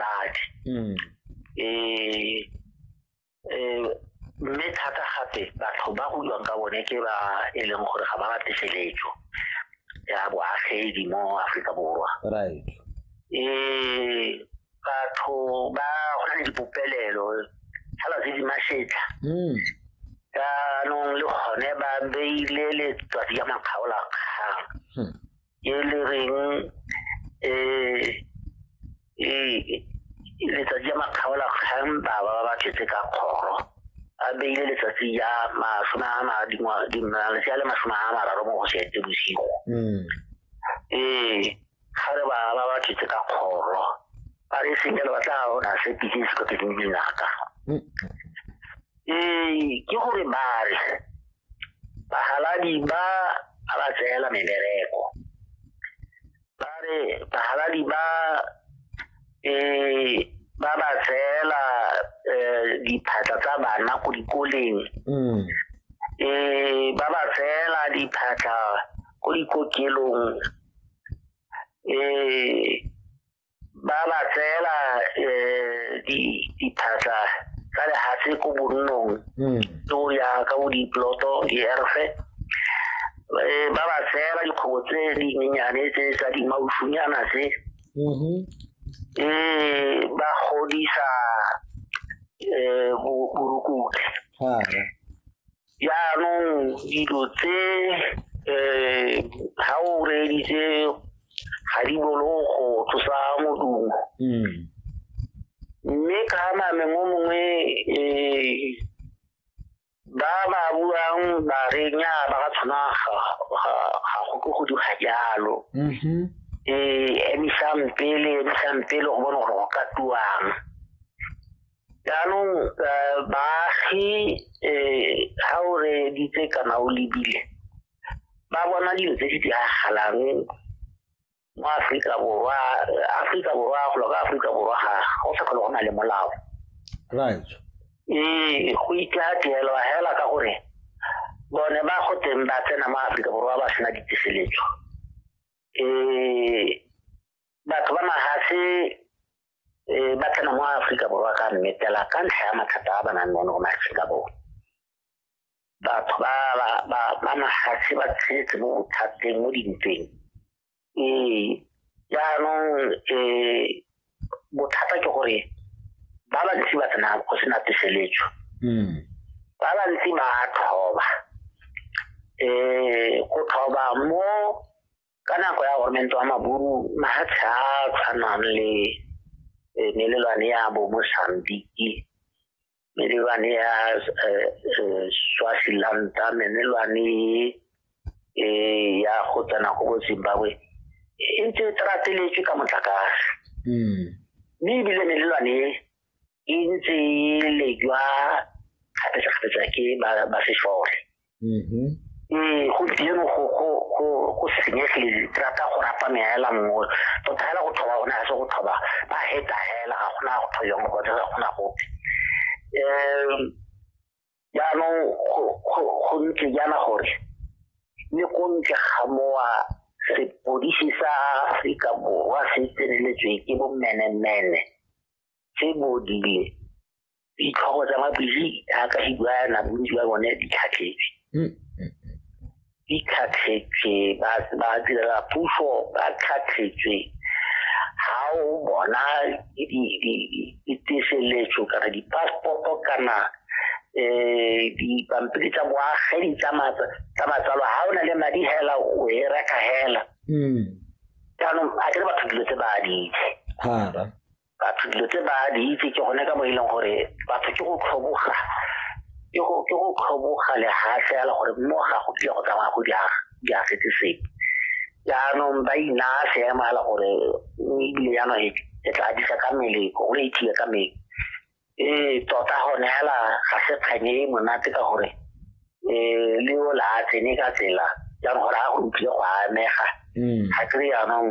bakhe mm. eh, eh, mme thata gape batho ba go ka bone ke ba e leng gore ga ba rate seletso ya boagedi mo aforika borwa right eh batho ba go na le dipopelelo fela tse di masetlha hmm. jaanong le gone ba beile letsatsi ya makgaolakgang hmm. e le reng eh letsatsi ya makgaola kgang ba ba ba tletse ka kgoro a beile letsatsi ya masome a madi malatsi a le masome a mararo mo go setse bosigo ee ga re ba ba ba tletse ka kgoro ba re senyelo ba tla ona se pitse se ka pitse dinaka ee ke gore ba re bahaladi ba a ba tseela mebereko ba re bahaladi ba eh ba ba tseela eh, diphatla tsa bana ko dikoleng mm. eh ba ba tseela diphatla ko dikokelong eh ba ba tseela um diphatlha tsa lehatshe ko bonnong hmm. ke o ya ka bo diploto dierfe eh, ba ba tseela dikgobo tse dinyenyane tse tsa dimausunyana tse mm-hmm. eh, ba godisa um eh, borukutlhi jaanong dilo tse um ga o reeditse ga di bolo go tlosa modumo hmm. mme ka name mo mongwe um ba ba buang ba re nya ba ka tshwana ga go ke go diga jalo um mm-hmm. emisang pele emisang pele go bone gore go ka tuang jaanong eh, baagi um ga o reeditse kana o lebile ba bona dilo tse di diragalang mo aforika borwa aforika borwa golo ka aforika borwa ga go sa kgole go na le molao right ee go itlateelwa fela ka gore bone ba go teng ba tsena mo aforika borwa ba sena ditiseletso um batho ba mahatshe um ba tsena mo aforika borwa ka mmetela ka ntlha ya mathata a ba nang le one go mahatshe ka bone batho ba mahatshe ba tshetse mo bothateng mo dintweng ee jaanong um bothata ke gore ba bantsi ba tsena go sena teseletso hmm. ba bantsi ba tlhoba um go tlhoba mo ka nako ya gormento wa maburu mafatshe a tshwanang le e, melelwane ya bo mosambiki melelwane ya e, e, swasilanta melelwane ya go tsena go bo zimbabwe e ntse e trateletswe ka motlakase hmm. mme ebile melelwane e ntse e lejwa kgapetsa-kgapetsa ke ba sešole mm-hmm. ee gompieno go senyege rata go rapa meela nngwe tota fela go thoba gone ga se go thoba ba heta fela ga gona go thoba mo gone ga gona gope um jaanong go ntse jaana gore le ko ntle ga mowa sepodisi sa aforika borwa se tseneletswe ke bommenemene tse bodile ditlhogo tsa mabili a ka hibuana bontsi ba bone di tlhatlhetse hmm. di tlhatlhetse ba ba direla puso ba tlhatlhetse ha o bona diteseletso kana di-passporto kana um dipampiri tsa boagedi tsa matsalo ha o na le madi hela o e reka hela hmm. jaanong a kere batho dilo tse ba di itse batho dilo tse ba di itse ke gone ka mo e leng gore batho ke go tlhoboga ke go ke go tlhoboga lehatlhe ya le gore mo ga go tlile go tsamaya go di agetse sepe jaanong ba inaya seemo ya le gore ebile jaanong e tla disa ka mmele go le ithiye ka mmele ee tota gone fela ga se kganye e monate ka gore um le o la tsene ka tsela jaanong gore a go utlwile go amega mm. ga kry jaanong